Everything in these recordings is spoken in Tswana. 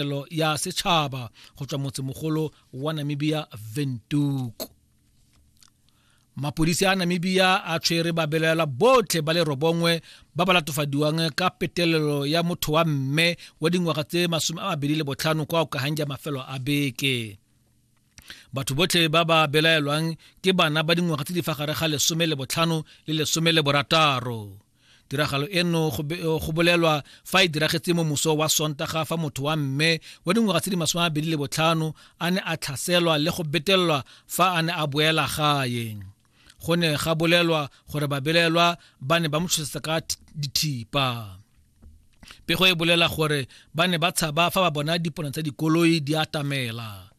tirelo ya setšhaba go tswa motsemogolo wa namibia ventuku mapodisi a namibia a tshwere babelaela botlhe ba le robongwe ba ba latofadiwang ka petelelo ya motho wa mme wa dingwaga tse masome a mabedi le botlhano kwa okahang ja mafelo a beke batho botlhe ba ba belaelwang ke bana ba dingwaga tse di fa gare ga lesome le botlhano le lesome le borataro tiragalo eno go bolelwa fa e diragetse mo moso wa sontaga fa motho wa mme wa dingwaga tse di masome a bedi le botlhano a ne a tlhaselwa le go betelelwa fa a ne a boela gae go ne ga bolelwa gore babelelwa ba ne ba mo tshosetsa ka dithipa pego e bolela gore ba ne ba tshaba fa ba bona dipone tsa dikoloi di atamela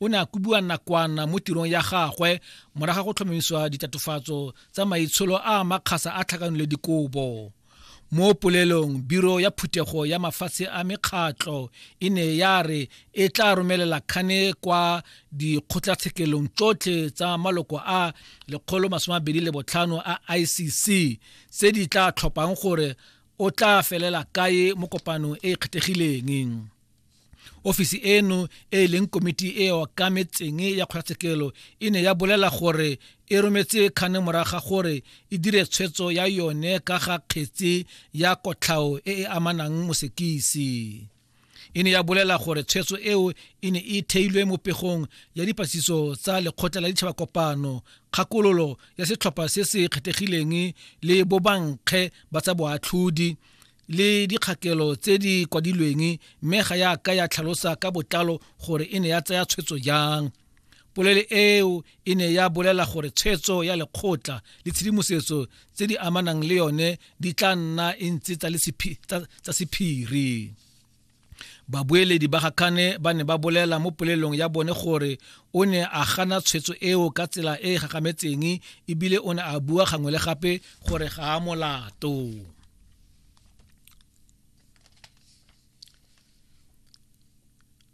o ne a kobiwa nakwana mo tirong ya gagwe moraga go tlhomamisiwa ditatofatso tsa maitsholo a makgasa a tlhakanole dikobo mo polelong biro ya phuthego ya mafatshe a mekgatlho e ne ya re e tla romelela kgane kwa dikgotlatshekelong tsotlhe tsa maloko a lekgolo masome abedi le botlhano a icc tse di tla tlhophang gore o tla felela kae mo kopanong e e kgethegileng ofisi eno e e leng komiti e e okametseng ya kgotlatshekelo e ne ya bolela gore e rometse kgane moraga gore e dire tshwetso ya yone ka ga kgetse ya kotlhao e e amanang mosekisi e ne ya bolela gore tshwetso eo e ne e theilwe mo pegong ya dipatlisiso tsa lekgotla la ditšhaba kopano kgakololo ya setlhopha se se kgethegileng le bobankge ba tsa boatlhodi le dikgakelo tse di kwadilweng mme ga ya ka ya tlhalosa ka botlalo gore e ne ya tsaya tshwetso jang polele eo e ne ya bolela gore tshwetso ya lekgotla le tshedimosetso tse di amanang le yone di tla nna e ntse tsa sephiri babueledi ba ga kane ba ne ba bolela mo polelong ya bone gore o ne a gana tshwetso eo ka tsela e e gagametseng ebile o ne a bua gangwe le gape gore ga a molato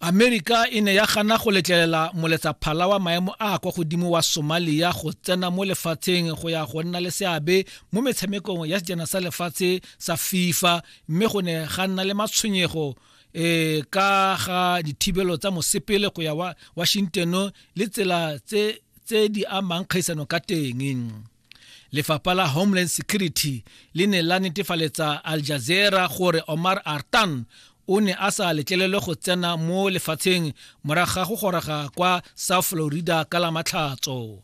amerika e ne ya gana go letlelela moletsaphala wa maemo a a kwa godimo wa somalia go tsena mo lefatsheng go ya go nna le seabe mo metshamekong ya sejana sa lefatshe sa fifa mme go ne ga nna le matshwenyego um ka ga dithibelo tsa mosepele go ya wa washington le tsela tse tse di amang kgaisano ka teng lefapha la homeland security le ne la netefaletsa al jazeera gore omar artan o ne a sa letlelelwe go tsena mo lefatsheng morago ga go goroga kwa south florida ka la matlhatso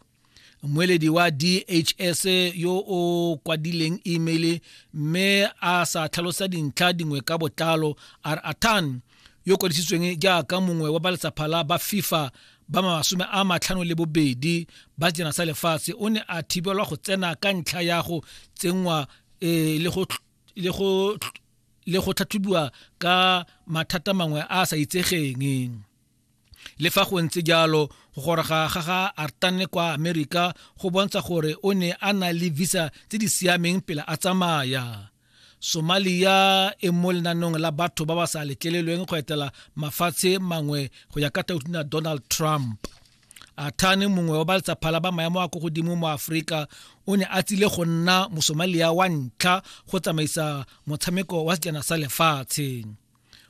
mmueledi wa DHS yo o kwadileng email mme a sa tlhalosa dintlha dingwe ka botlalo a re Atan yo kwadisitsweng jaaka mongwe wa ba letsapha la ba FIFA ba masome a matlhano le bobedi ba sejana sa lefatshe o ne a thibelwa go tsena ka ntlha ya go tsenngwa e, le go le go le go tlhatlhobiwa ka mathata mangwe a a sa itsegeng le fa go ntse jalo go goroga ga ga artane kwa amerika go bontsha gore o ne a na le visa tse di siameng pele a tsamaya somalia e mo lenanong la batho ba ba sa letlelelweng go etela mafatshe mangwe go ya ka tautona donald trump athane mongwe wa ba letsaphala ba maemo a ko godimo mo aforika o ne a tsile go nna mosomalia wa ntlha go tsamaisa motshameko wa sejana sa lefatshe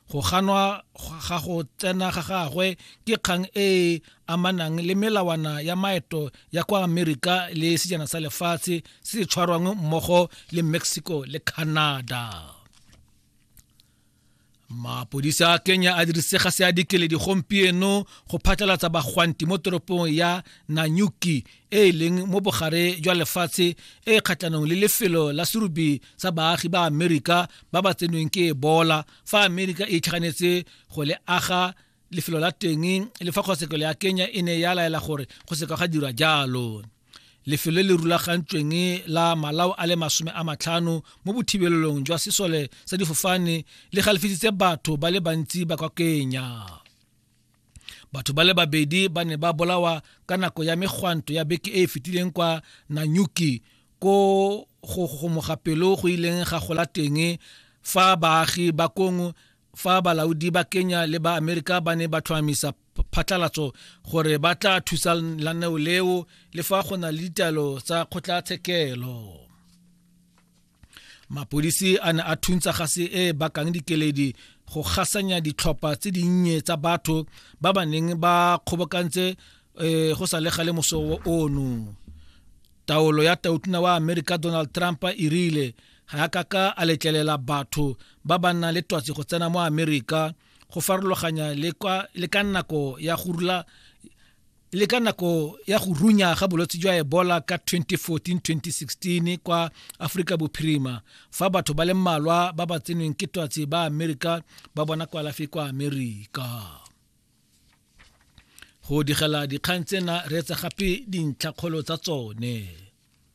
Go ganwa ga go tsena ga gagwe ke kgang e e amanang le melawana ya maeto ya kwa Amerika le sejana sa lefatshe se se tshwarwang mmogo le Mexico le Canada. Mapodisi a Kenya a dirise gase ya dikeledi gompieno go phatlalatsa bagwanti mo toropong ya Nanyuki e e leng mo bogare jwa lefatshe e e kgatlhanong le lefelo la serubi sa baagi ba amerika ba ba tsenweng ke ebola fa amerika e itlhaganetse go le aga lefelo la teng le fa kgotshekelo ya kenya e ne ya laela gore go seka ga dirwa jalo lefelo le rulagantsweng la malao a le masome a matlhano mo bothibelelong jwa sesole sa difofane le galefisitse batho ba le bantsi ba kwa kenya batho ba le babedi ba ne ba bolawa ka nako ya megwanto ya beke e e fetileng kwa nanyuki ko go gomoga pelo go ileng ga gola teng fa baagi ba kong fa balaodi ba kenya le ba amerika ba ne ba tlhomamisa phatlalatso gore ba tla thusa laneo leo le fa go na le ditaelo tsa kgotlatshekelo mapodisi a ne a thuntsa gase e e bakang dikeledi go gasanya ditlhopha tse dinnye tsa batho ba ba neng ba kgobokantse um go sa le gale moso ono taolo ya tautona wa amerika donald trump e rile ga ya kaka a letlelela batho ba ba nnang le twatsi go tsena mo amerika go farologanya le ka nako ya go rula le ka nako ya go runya ga bolwetse jwa ebola ka 2014-2016 kwa aforika bophirima fa batho ba le mmalwa ba ba tsenweng ke twatsi ba amerika ba bona kwalafi kwa amerika go digela dikgang tsena re etsa gape dintlhakgolo tsa tsone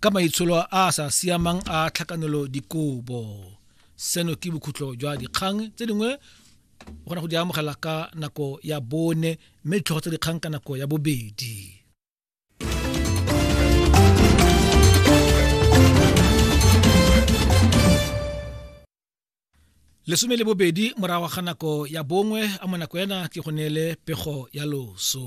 ka maitsholo a a sa siamang a tlhakanelo dikobo seno ke bokhutlo jwa dikgang tse dingwe o kgona go di amogela ka nako ya bone mme ditlhogo tsa dikgang ka nako ya bobedi lesome le bobedi morago ga nako ya bongwe a mo nako ena ke go neele pego ya loso